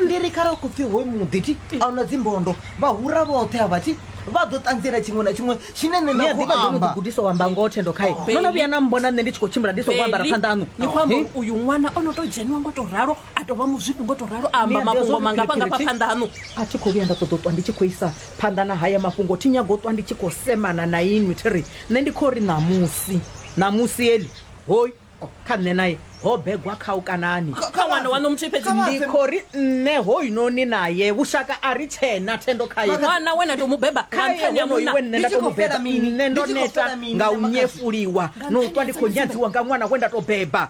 ndi ri khare ku pfi hoyu muḓi ti a una dzimbondo vhahura vhoṱhe a vha ti vha ḓo ṱanziela tshiṅwe na tshiṅwe tshine nṋe nda khou amba gudisa u amba ngoho thendo khae no no vhuya na mbona nṋe ndi tshi khou tshimbila ndi songo ambara phanḓa aṋu ni khou amba uri uyu ṅwana o no tou dzheniwa ngo tou ralo a tou vha muzwipi ngo tou ralo a amba mafhungo mangafha ngafha phanḓa aṋu a thi khou vhuya nda ṱoḓa u ṱwa ndi tshi khou isa phanḓa na haya mafhungo thi nyago u ṱwa ndi tshi khou semana na inwi thi ri nṋe ndi khou ri ṋamusi ṋamusi eli hoyu kha nṋe naye ho begwa kha u kanani kha ṅwana waṋu muthihi fhedzi ndi khou ri nṋe hoyunoni naye vhushaka a ri tshena thendo khaye ṅwana we na tou mu beba kha nṱhani ha munna nṋe nda tou mu beba nṋe ndo neta nga u nyefuliwa na u ṱwa ndi khou nyadziwa nga ṅwana we nda tou beba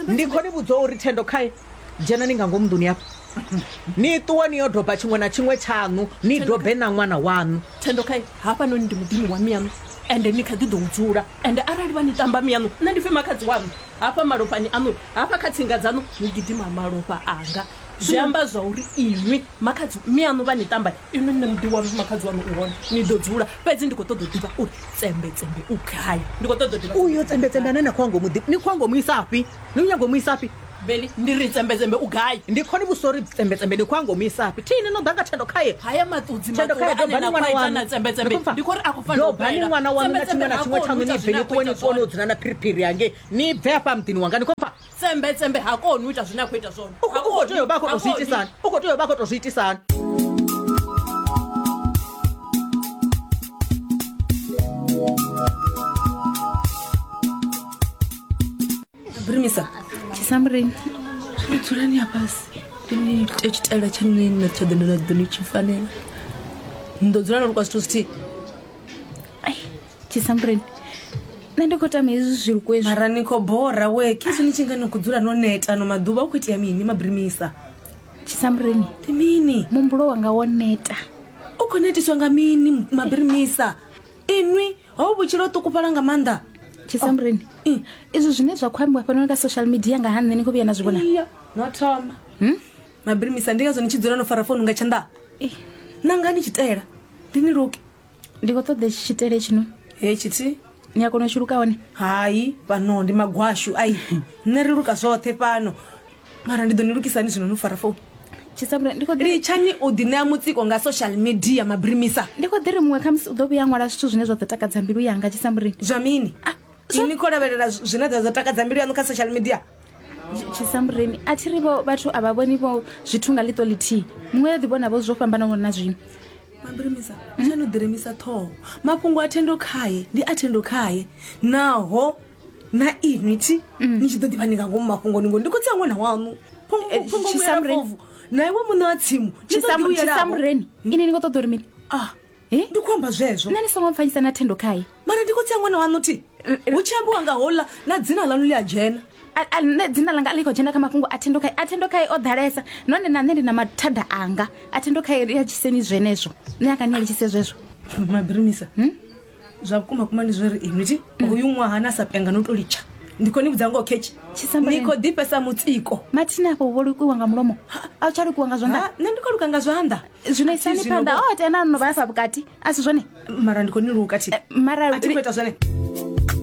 ndi khou ni vhudza uri thendo khaye dzhenani nga ngomu nḓuni yafho ni ṱuwe ni yo doba tshiṅwe na tshiṅwe tshaṋu ni dobe na ṅwana waṋu thendo kha hafhanoni ndi muḓini wa miyaṋu ende ni kha ḓi ḓo u dzula ende arali vha ni tamba miyaṋu nṋe ndi pfi makhadzi waṋu hafha malofhani aṋu hafha kha tsinga dzaṋu hu gidima malofha anga zwi amba zwa uri inwi makhadzi miyaṋu vha ni tamba inwi nṋe muḓi waṋu makhadzi waṋu u hone ni ḓo dzula fhedzi ndi khou ṱoḓa u ḓivha uri tsembetsembe u gai ndi khou ṱoḓa u ḓivha uyo tsembetsembe ane na khou ya ngomu ḓi ni khou ya ngomu isafhi ni u nyago mu isafhi beli ndi ri dzembedzembe u gai ndi khoni vhusori dzembedzembe ndi khou a ngomu isafhi thi ine no ḓa nga thendo khaye haya maṱudzi Thendo khaye, maṱula ane dobani na ṅwana khwaita waṋu. na dzembedzembe Ndi khou pfa. ndi khou ri a khou fanela u dobani bela. ṅwana waṋu na tshiṅwe na Dzembedzembe tshiṅwe ha tshaṋu koni u ni ita bve zwine ni a khou ṱuwe ni ita ṱuwe zwone. no dzula na phiriphiri hangei ni bve hafha muḓini wanga ni khou pfa dzembedzembe ha koni u ita zwine a khou ita zwone u khou- u khou tea u vha a khou tou zwi itisani u khou tea u vha a khou tou zwi itisani Brimisa, Chisamburini. dzulani hafhasi ni ite tshitaela tsha nṋe na tsha ḓo na ḓo ni tshi fanela ni ḓo dzula na lukwa zwithu zwithihi Ai, Chisamburini. Nṋe ndi khou tama hezwi zwi lukwe zwi. mara ni khou bora we kisi ni tshi nga ni khou dzula no neta ano maḓuvha u khou itea mini mabrimisa Chisamburini. ndi mini Muhumbulo wanga wo neta. u khou netiswa nga mini mabrimisa inwi hou vhutshilo ho ṱukufhala nga maanḓa tshisamureni oh, izwi zwine zwa khou ambiwa fhanoni kha social media nga ha nṋe ni khou vhuya na zwi vhona no thoma hmm? mabirimisa ndi ngazwo ni tshi dzula no fara founu nga tshanḓa nanga ni tshitela ndi ni luke ndi khou ṱoḓa tshi tshitele tshino he tshithihi ni a kona u tshi luka hone hai fhano ndi magwashu ai nṋe ri luka zwoṱhe fhano mara ndi ḓo ni lugisani zwino no fara founu tshisabula ndi khou ḓi litshani o ḓi ṋea mutsiko nga social media mabrimisa ndi khou ḓi ri muṅwe khamusi u ḓo vhuya a ṅwala zwithu zwine zwa ḓo takadza mbilu yanga tshisamburi zwa mini Ah, zwa- ini khou lavhelela zw- zwine zwa zwa takadza mbilu yaṋu kha social media tshisambureni a thi ri vho vhathu a vha vhoni vho zwithu nga ḽiṱo ḽithihi muṅwe ya ḓi vhona vho zwo fhambanaho na zwino mabrimisa tsha no ḓiremisa ṱhoho mafhungo a thendo khaye ndi a thendo khaye naho na inwi thi ni tshi ḓo ḓivha ni nga ngomu mafhungoni ngori ndi khotsi a ṅwana waṋu Eh, Tshisamureni. phongomuyaovu na iwe muṋe wa tsimu ni ḓo ḓi uyelaho. tshisamureni ini ni khou ṱoḓa uri mini Ah, Eh? ndi khou amba zwezwo nṋe ni songo mpfanyisa na thendo khaye mara ndi khotsi a ṅwana waṋu thi hu tshi ambiwa nga hola na dzina ḽaṋu ḽi a dzhena A- a- nṋe dzina ḽanga a ḽi khou dzhena kha mafhungo a thendo khaye a thendo khaye o ḓalesa nahone na nṋe ndi na mathada anga a thendo khaye ri a tshiseni zwenezwo nṋe a ka ni a litshise zwezwo mabirimisa zwa vhukuma kuma ndi zwori inwi ti uyu ṅwaha na sa penga no to litsha ndi khou ni vhudza ngoho khetshi Tshisamba ni ni- khou ḓifhesa mutsiko mathina afho wo lukiwa nga mulomo a u tsha lukiwa nga zwanḓa Ha, nṋe ndi khou luka nga zwanḓa zwino isani Thi zwino phanḓa vho- o tena no vha ya fha vhukati a si zwone mara ndi khou ni luka thi mara a thi khou ita zwone